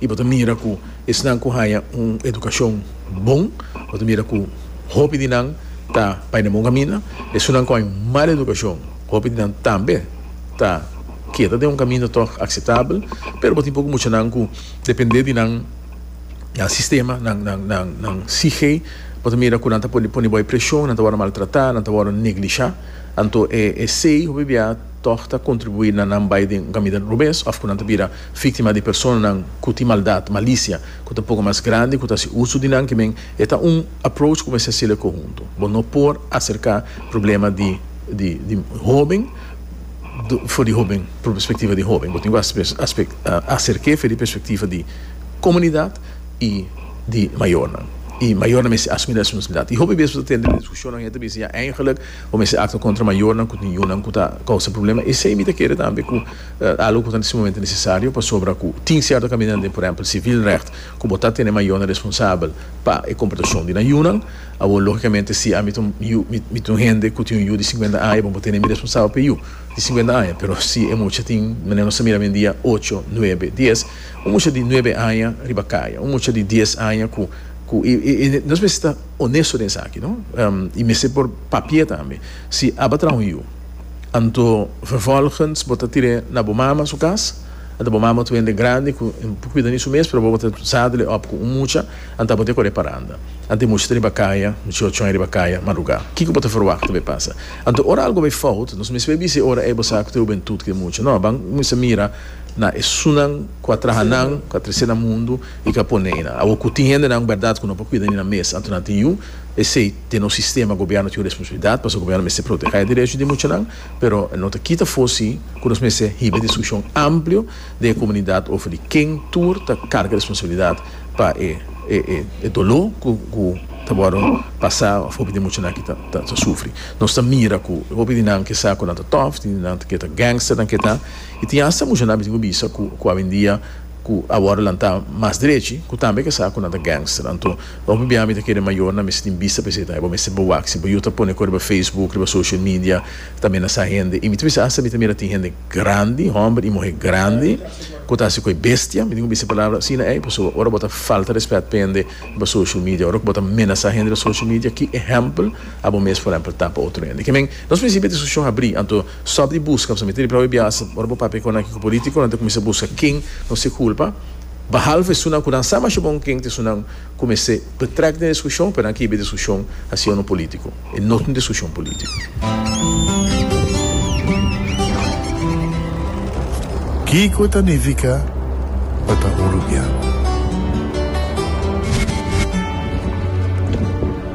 I bo ta mira ku esnan ku haña un edukashon bon, bo ta mira ku hopi di nan ta bai den bon kaminda. Esunnan ku haña un mal edukashon, hopi di nan tambe ta keda den un kaminda tòg akseptabel. Pero bo tin poko muchanan ku depende di nan sistema, nan nan nan sihé, bo ta mira ku nan ta por pone bo e preshon, nan ta wòrdu maltratá, nan ta wòrdu neglishá. Anto esei hopi biaha tòg ta kontribuí na nan bai den un kaminda robes òf ku nan ta bira. Víktima di personanan ku tin maldat, malisia, ku ta poko mas grandi ku ta hasi uso di nan kimen, e ta un approach ku mester hasi'l e konhuntu. Bo no por aserká problema di di hóben for di hóben, por perspektiva di hóben. Bo tin ku aserk'é for di perspektiva di komunidat i di mayornan. I mayornan mester asumí responsablidat. I hopi bes bo ta tende na diskushonnan henter bisa ya, eingelik bo mester aktua kontra mayornan ku tin yunan ku ta kousa problema. Esei mi ta kere tambe ku. Algo ku ta sumamente nesesario pasobra ku tin sierto kaminda den, por ehèmpel, sivilrecht ku bo ta tene mayornan responsabel pa e komportashon di nan yunan. Awor, lógikamente, si ami ta un yu, mi ta un hende ku tin un yu di sinkuenta aña, bo por tene mi responsabel pa e yu di sinkuenta aña. Pero si e mucha tin, manera nos ta mira awendia, ocho, nuebe, dies, un mucha di nuebe aña riba kaya, un mucha di dies aña ku, ku i, i, i nos mester ta onesto den esaki, no? I mester por papia tambe si aba traha un yu. Anto vervolgens bo ta tir'é na bo mama su cas, anta bo mama ta wende grandi cu e por cuida ni su mes, pero bo bo ta zadel-e op cu un mucha, anta bo ta e cor'é paranda. Anta e mucha ta riba caya, mich'o chon e riba caya, marugá. Kico bo ta verwachta bay pasa? Anto ora algo bay fout, nos mes bay bisa e ora ey bo sa cu ta e hubentud cu e mucha. No, ban cuminsa mira na esunnan cu a traha nan, cu a trece nan mundu y cu a pone eynan. Awo cu tin hendenan berdad cu no por cuida ni nan mes, anto nan tin yu, esey, Den nos sistema gobièrnu tin un responsabilidat pasobra gobièrnu mester protegé derecho di muchanan, pero e no ta kita fosi ku nos mester hiba e diskushon amplio den e komunidat over di ken tur ta karga responsabilidat pa e e doló ku ta wòrdu pasá òf hopi di muchanan aki ta sufri. Nos ta mira ku hopi di nan ke sa ku nan ta tòf, tin di nan ke ta gangster nan ke ta i tin hasta muchanan mi tin ku bisa ku awendia ku a wòrdu lantá mas drechi ku tambe ke sa ku nan ta gangster. Anto. Hopi bia mi ta kere mayornan mester tin bista pa esei tambe, bo mester bo wak, si bo yu ta pone ku riba Facebook, riba social media, tambe na sa hende, y mi ta bisa hasta mi ta mira tin hende grandi, homber y muher grandi, ku ta hasi ku e bestia, mi tin ku bisa e palabra asina ey, pasobra ora bo ta falta respet pa hende riba social media, ora ku bo ta menasa hende riba social media, ki ehempel abo mes por ehempel ta pa otro hende? Ke men, nos principio di diskushon habri, anto stop di buska, pasobra mi ta riba awe biaha, ora bo papia ku nan ki ku politikonan ta kuminsá buska ken nos e kulpa, Bahalve esunnan ku nan sa masha bon ken ta esunnan ku mester betrek den diskushon, pero nan kiba e diskushon hasi unu polítiko. E no ta un diskushon polítiko. Kiko ta nifiká pa ta un rubian?